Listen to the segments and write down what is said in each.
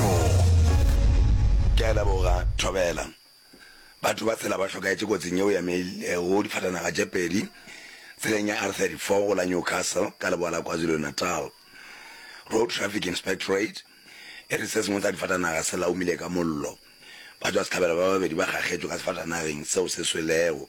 Thoo! Ke a leboga, Thobela. Batho ba tshela ba hlokaetše kotsing yeo ya mail go difatanaga tše pedi tseleng ya R34 go la Newcastle ka leboa la KwaZulu-Natal. Road Traffic Inspectorate e re se sengwe sa difatanaga se laumile ka mollo. Ba tšwa sehlabelo ba babedi ba kgakgetšwe ka sefatanageng seo se swelego.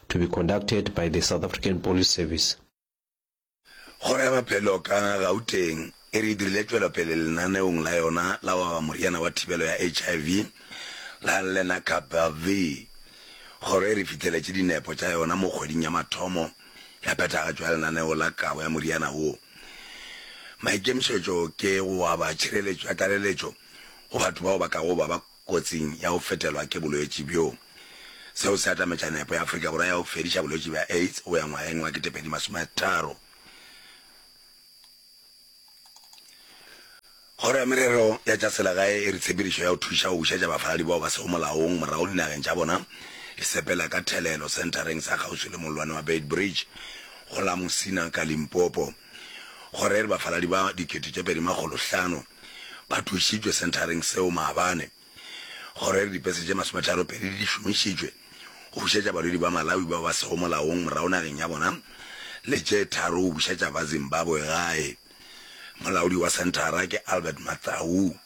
to be conducted by the South African Police Service. Kgoro ya Maphelo ka Gauteng e re e dirile tšwelopele lenaneong la yona la go aba moriana wa thibelo ya HIV la Lenacapavir. Kgoro e re fitheletše dinepo tša yona mo kgweding ya mathomo ya phethagatšo ya lenaneo la kabo ya moriana wo. Maikemišetšo ke go aba tšhireletšo ya tlaleletšo go batho bao ba kago ba ba kotsing ya go fetelwa ke bolwetši bjo. Seo se atametša nepo ya Afrika Borwa ya go fediša bolwetši bja AIDS go ya ngwageng wa 2030. Kgoro ya Merero ya tša Selegae e re tshepedišo ya go thuša go bušetša bafaladi bao ba sego molaong morago dinageng tša bona e sepela ka thelelo senthareng sa kgauswi le mollwane wa Beitbridge go la Musina ka Limpopo. Go re re bafaladi ba dikete tše pedi makgolo hlano ba thušitšwe senthareng seo maabane. Go re re dipese tše masometharo pedi di šomišitšwe go bušetša balwedi ba Malawi bao ba sego molaong morago nageng ya bona le tše tharo go bušetša ba Zimbabwe gae. Molaodi wa senthara ke Albert Mathau.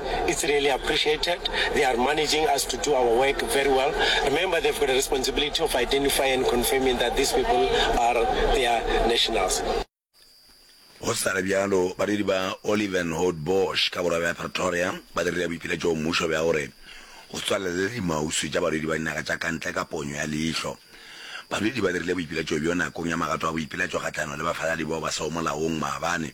It's really appreciated. They are managing us to do our work very well. Remember they've got a responsibility of identifying and confirming that these people are their nationals. Go sa le bjalo, badiri ba Olivenhout Bosch ka borwa bja Pretoria ba dirile boipiletšo go mmušo bja gore o tswalelele dimauswi tša badudi ba dinaga tša ka ntle ka ponyo ya leihlo. Badudi ba dirile boipiletšo bjo nakong ya magato a boipiletšo kgahlano le bafaladi bao ba sego molaong maabane.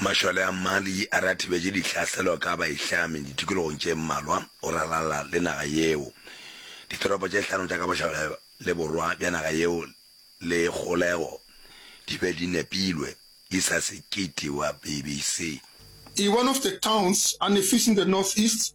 Mašole a Mali a re a thibetše ditlhaselo ka baihlami ditikologong tše mmalwa go ralala le naga yeo. Ditoropo tše hlano tša ka bošole le borwa bja naga yeo le kgolego di be di nepilwe, Isa Sekiti wa BBC. I one of the towns and a fish in the northeast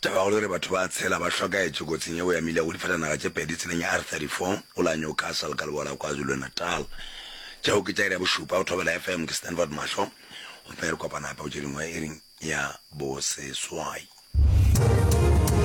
Tabagolo e re batho ba tshela ba hlokaetše kotsing yeo ya mile go difatanaga tše pedi tseleng ya R34 go la Newcastle ka leboa la KwaZulu-Natal. Tšeo ke tša iri ya bošupa go Thobela FM, ke Stanford Mahlo gomme re kopana gape go tše dingwe iring ya boseswai.